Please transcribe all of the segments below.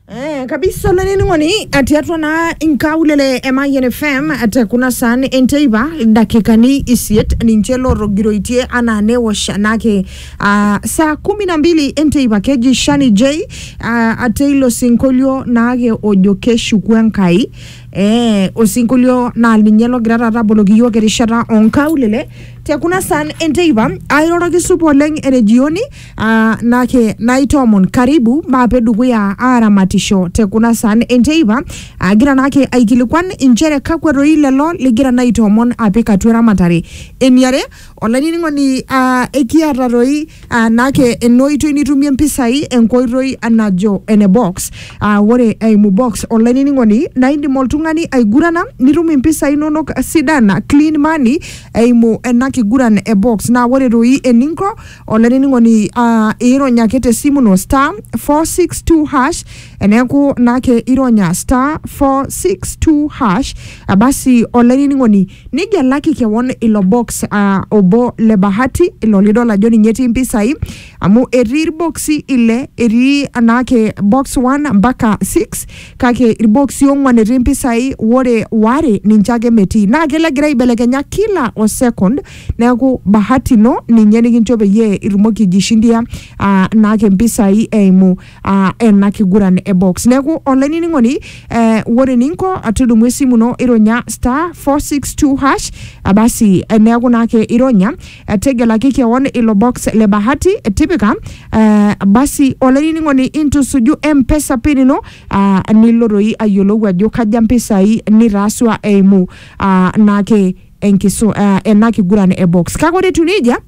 Eh, kabisa olainining'oni atii atua naa inkaulele e Mayian FM te kuna saan enteipa dakikani isiet ninche lootogiroitie anaa newosh naake ah, saa kumi na mbili enteipa keji Shani J ah, ate ilo sinkolio naake ojo keshuku Enkai eh, osinkolio naa ninye logira taata aboloki iyiok erishata onkaulele te kuna saan enteipa airoroki supa oleng ene jioni Ah, nake naitoomon karibu maape dukuya aaramatisho te kuna saan enteipa agira naake aikilikuan inchere kakwa doi lelo ligira naa aitoomon apik atua eramatare eniare olainining'oni ah, ekiata doi ah, naake ena oitoi nitumie mpisai enkoitoi najo ene box ah, ore eimu box olainining'oni naa indim oltung'ani aigurana nitum impisai inonok sidan clean money eimu ena kiguran e box naa ore doi eninko olainining'oni uh, ironya ake te simu no star 462 hash eneeku naake ironya star 462 hash eh, basi olainining'oni nigelaki kewon ilo box uh, obo le bahati ilo lidol ajo ninye etii mpisai amu etii irboksi ile etii naake box 1 mpaka 6 kake irboksi ong'wan etii mpisai wore ware ninche ake metii naa kelo egira aibelekenya kila o second Neaku bahati ino ninye nikincho peyie itumoki aijishindia ah, naake mpisai eimu ah, ena kiguran e box. Neaku olainining'oni eh, ore eninko tudumu esimu ino ironya star 462 hash ah, basi eh, neaku naake ironya eh, tegelaki kewon ilo box le bahati eh, tipika eh, basi olainining'oni intusuju mpesa pin ino ah, nilo doi ayiolou ajo kaja mpisai nitaasua eimu ah, naake enkisu, uh, ena kiguran e box kake ore etiu nejia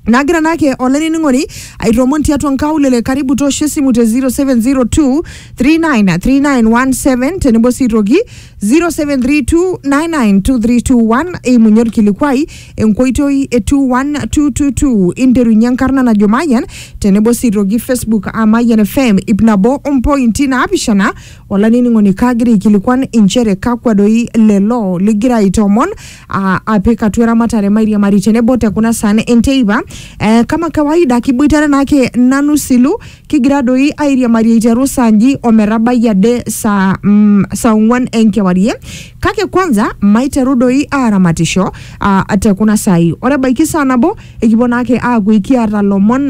nagira naake olainining'oni aitoomoon tiatua nkaulele karibu toosho esimu te 0702 393917 tenebo sii toki 0732992321 eimunye orkilikuai enkoitoi e 21222 interunye enkarna najo mayian tenebo sii toki facebook a mayian fm ip nabo ompointi naapishana Olainining'oni, kaagira aikilikuan inchere kakwa doi lelo ligira aitoomon aa, apik atua eramatare mairiamari tenebo te kuna saan enteipa. Eh, kama kawaida kiboitare naake nanu silu kigira doi airiamari aiteru saa nji o metabai ade saa mm, saa ong'uan enkewarie. Kake kwanza maiteru doi aaramatisho aa te kuna saai. Ore ebaiki saa nabo ekipuo naake aaku ekiata lomon.